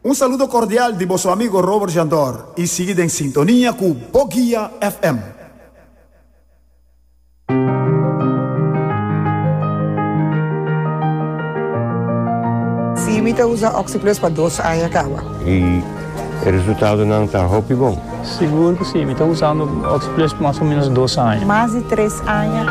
Un saludo cordial di boso amigo Robert Jandor y sigui den sintonia cu Bo Guia FM. Sí, mi ta usa OxiPlus pa dos aña caba. Y e resultadonan ta hopi bon. Sigur cu sí, mi ta usando OxiPlus pa mas o menos dos aña. Mas di tres aña.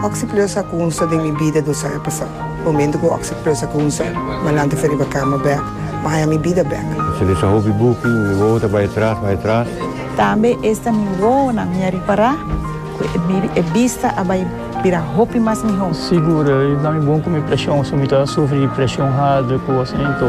OxiPlus a cunsta den mi bida dos aña pasado. Momento cu oc se presa cu un ser malante fe riba cama bek, Maya mi bida bek. Se lesa hopi buki, mi wowo ta bay atras, bay atras. Tambe esta mi wowonan mi a ripara cu e bista a bay bira hopi mas miho. Sigur, e da mi bon cu mi presion, si mi ta sufri di presion harder cu asina, ento.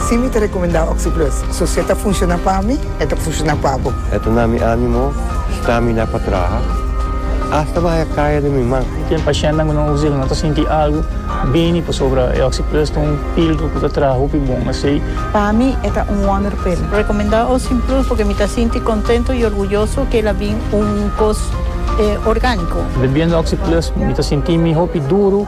Si mi ta rekomendá Oxyplus, so si e ta funshoná pa mi, e ta funshoná pa bo. E ta na mi ánimo stamina pa traha asta baha kaya di mi man. Ken pashentenan ku no usa el no ta sinti algu bini pasobra e Oxyplus ta un píldora ku ta traha hopi bon asei. Pa mi e ta un wonder pil. Rekomendá Oxyplus pasobra mi ta sinti kontento i orguyoso ku el a bin un kos orgániko. Bebiendo Oxyplus mi ta sinti mi hopi duru.